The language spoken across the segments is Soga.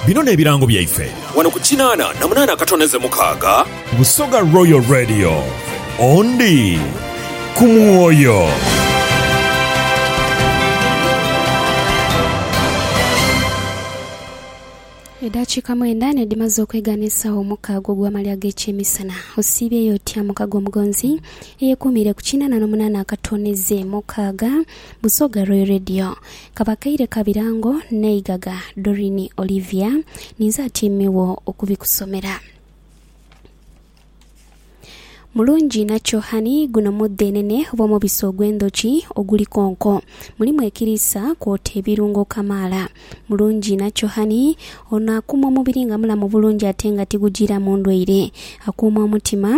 Bino n'ebirango byaife. Wano ku kinaana na munaana akatoneze mukaaga. Busoga Royal Radio. Ondi ku mwoyo. Edaakiika mwenda nedhimaze okwegaana esaawa omukaaga ogw'amaali ag'ekyemisana, osiibyeyo otya mukago omugonzi eyekuumiire ku kinaana n'omunaana akatooneze mukaaga Busoga Royal Radio. Kabakaire Kabirango n'eigaga Doreen Olivia, ninze atyaimegho okubikusomera. Mulungi inha Chohani, Guno mudhenene oba omubisi ogw'endhoki oguli konko. Mulimu ekiriisa kwota ebirungo kamaala. Mulungi inha Chohani, Ono akuuma omubiri nga mulamu bulungi ate nga tigujiiramu ndwaire. Akuuma omutima.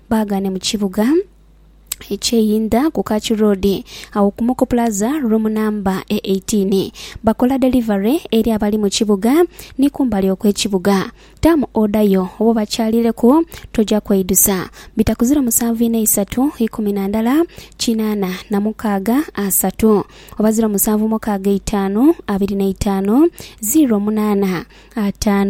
Baagane mu kibuga eky'e Yinda ku Kach Road agho ku Moko Plaza, room namba e 18. Bakola delivery eri abali mu kibuga ni kumbali okw'ekibuga. Taamu oda yo oba obakyalireku, toja kweidusa. Bita ku 07 inha isatu ikumi na ndala kinaana na mukaaga asatu oba 07 mukaaga eitaanu abiri na itaanu ziro munaana ataanu.